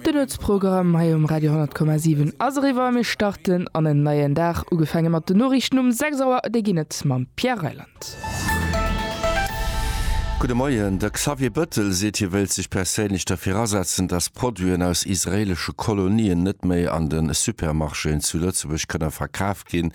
Den Nuetsprogramm hei um Radio 10,7 ass eriwwer. Mir starten an en neien Dag, ugefaange mat den Noriichten um 6 Auer. Déi ginn et mam Pierre Reyland. Gudde Moien. De Xavier Bëttel seet, hie wéilt sech perséinlech derfir asetzen, datt Produiten aus israeelesche Kolonien net méi an de Supermarchéen zu Lëtzebuerg kënne verkaaft ginn.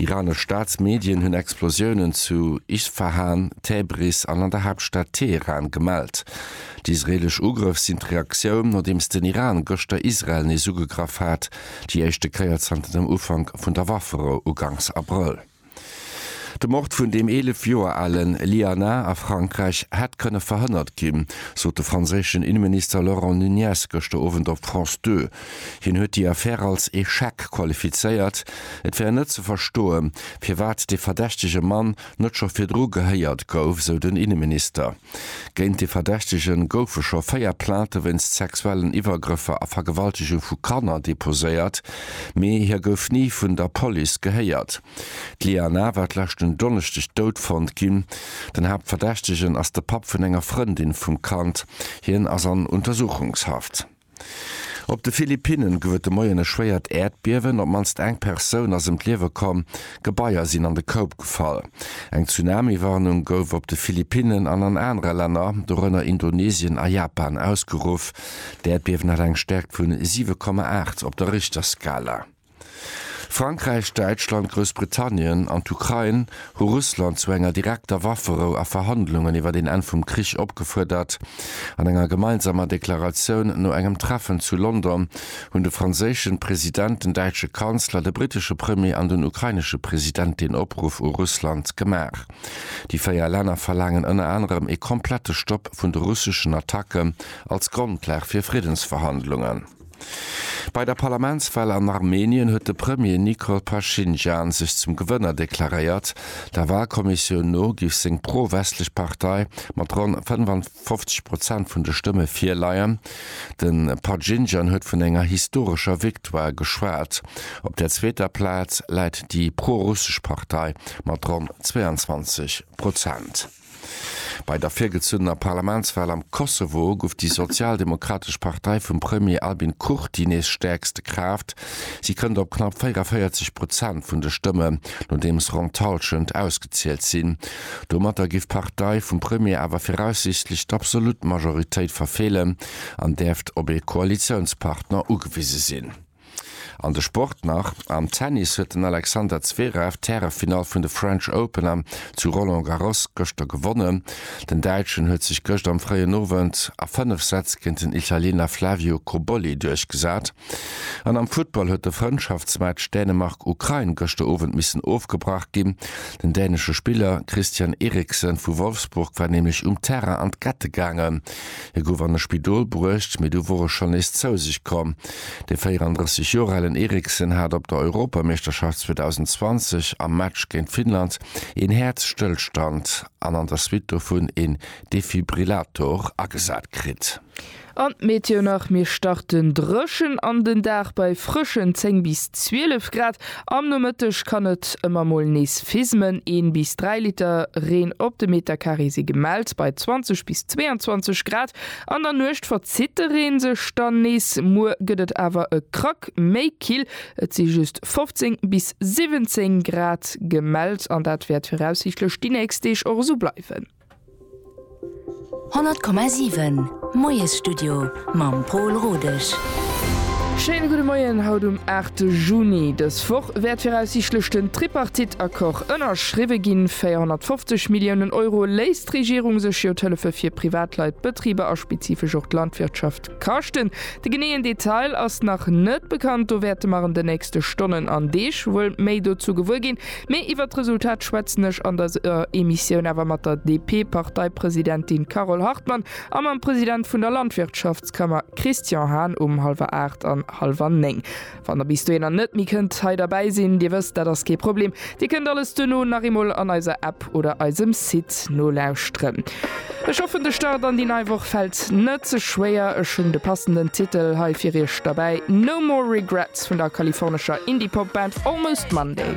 Iranesch Staatsmedien hunn Explosiounen zu Isfahan, Täbris an an der Haaptstad Teheran gemellt. Déi israeelesch Ugrëff sinn d'Reaktioun, nodeems den Iran gëschter Israel nees ugegraff hat, déi éischte Kéier zanter dem Ufank vun der Wafferou uganks Abrëll. De Mord vun dem 11 Joer alen Liana a Frankräich hätt kënne verhënnert ginn, sot de franséischen Inneminister Laurent Nunez gëschter Owend op France Deux. Hien huet déi Affär als Echec qualifizéiert. Et wär net ze verstoe firwat dee verdächtege Mann net scho virdru gehéiert gouf, sou den Inneminister. Géint de Verdächtege goufe scho véier Plainte wéinst sexuellen Iwwergrëffer a Vergewaltegung vu Kanner deposéiert, mee hie gouf ni vun der Police gehéiert. D'Liana war d'leschten Donneschdeg dout fonnt ginn. Den Haaptverdächtegen ass de Papp vun enger Frëndin vum Kand. Hien ass an Untersuchungshaft. Op de Philippinnen gouf et de Moien e schwéiert Äerdbiewen, op d'mannst eng Persoun ass ëm d'Liewe komm, Gebaier sinn an de Koup gefall. Eng Tsunami-Warnung gouf op de Philippinnen an an anere Länner, dorënner Indonesien a Japan, ausgeruff. D'Äerdbiewen hat eng Stäerkt vu 7,8 op der Richterskala. Frankräich, Däitschland, Groussbritannien an d'Ukrain hu Russland zu enger direkter Wafferou a Verhandlungen iwwer een Enn vum Krich opgefuerdert. An enger gemeinsamer Deklaratioun no engem Treffen zu London hunn de franséischen President, den däitsche Kanzler, de brittesche Premier an den ukrainesche President deen Opruff u Russland gemaach. Déi véier Länner verlaangen ënner anerem ee komplette Stopp vun de russeschen Attacke als Grondlag fir Friddensverhandlungen. Bei der Parlamentswal an Armenien huet de Premier Nikol Paschinjan sech zum Gewënner deklaréiert. Der Walkommissioun no géif seng pro-westlech Partei mat ronn 55 Prozent vun de Stëmme virleien. De Paschinjan huet vun enger historescher Victoire geschwat. Op der zweeter Plaz läit déi pro-russesch Partei mat ronn 22 Prozent. Bei der virgezunnener Parlamentswal am Kosovo guff déi sozialdemokratesch Partei vum Premier Albin Kurti nees stäerkste Kraaft. Si kënnt op knapp 44 Prozent vun de Stëmme, nodeems ronn d'Hallschent ausgezielt sinn. Domatter giff d'Partei vum Premier awer viraussiichtlech d'absolut Majoritéit verfeelen an däerft op ee Koalitiounspartner ugewise sinn. An de Sport nach, Am Tennis huet den Alexander Zverev d'Härefinall vun de French Open am zu Roland Garros gëschter gewonnen. Den Däitschen huet sech gëscht am fréien Owend a 5 Sätz géint den Italiener Flavio Cobolli duerchgesat. An am Futtball huet de Frëndschaftsmatch Dänemark-Ukrain gëschter Owend missen ofgebrach ginn. Den dänesche Spiller Christian Eriksen vu Wolfsburg war nämlech um Terrain an d'Gette gaangen. Hie gouf an e Spidol bruecht, mee du wor e schonn nees zou sech komm. De 34 Joer alen Eriksen hat op der Europameeschterschaft 2020 am Match géint Finnland een Häerzstëllstand an an der Suite dovun een Defibrillator agesat kritt. An d'Meteo nach, Mir starten drëchen an den Dag bei frëschen 10 bis 12 Grad. Am Nomëtteg kann et ëmmer mol nees fismen, een bis dräi Liter Reen op de Meterkaree si gemellt bei 20 bis 22 Grad. An der Nuecht verzitt de Reen sech dann nees, muer gëtt et awer e Krack méi kill, et si just 15 bis 17 Grad gemellt an dat wäert viraussiichtlech déi nächst Deeg och esou bleiwen. 100,7 Moiesstudio mam Pol Rodesch. Schéine gudde Moien haut um 8 Juni. Dës Woch wäert viraussiichtlech den Tripartite-Accord ënnerschriwwe ginn. 450 Milliounen Euro léisst d'Regierung sech jo d'Hëllefe fir Privatleit, d'Betriber a spezifesch och d'Landwirtschaft Kaschten. De geneeën Detail ass nach net bekannt, do wäerte mer an de nächste Stonnen an Deeg wuel méi dozou gewuer ginn. Mee iwwert d'Resultat schwätzen ech an der Emissioun awer mat der DP-Parteipresidentin Carole Hartmann a mam President vun der Landwirtschaftskammer Christian Hahn um hallwer aacht an hallwer néng. Wann der bis dohinner net méi kënnt hei derbäi sinn, Dir wësst, dat ass kee Problem, Dir kënnt alles duerno nach eemol an eiser App oder eisem Site nolauschteren. Ech hoffen, de Start an déi nei Woch fält net ze schwéier. Ech hunn de passenden Titel hei fir Iech derbäi, No More Regrets vun der kalifornescher Indie-Pop-Band Almost Monday.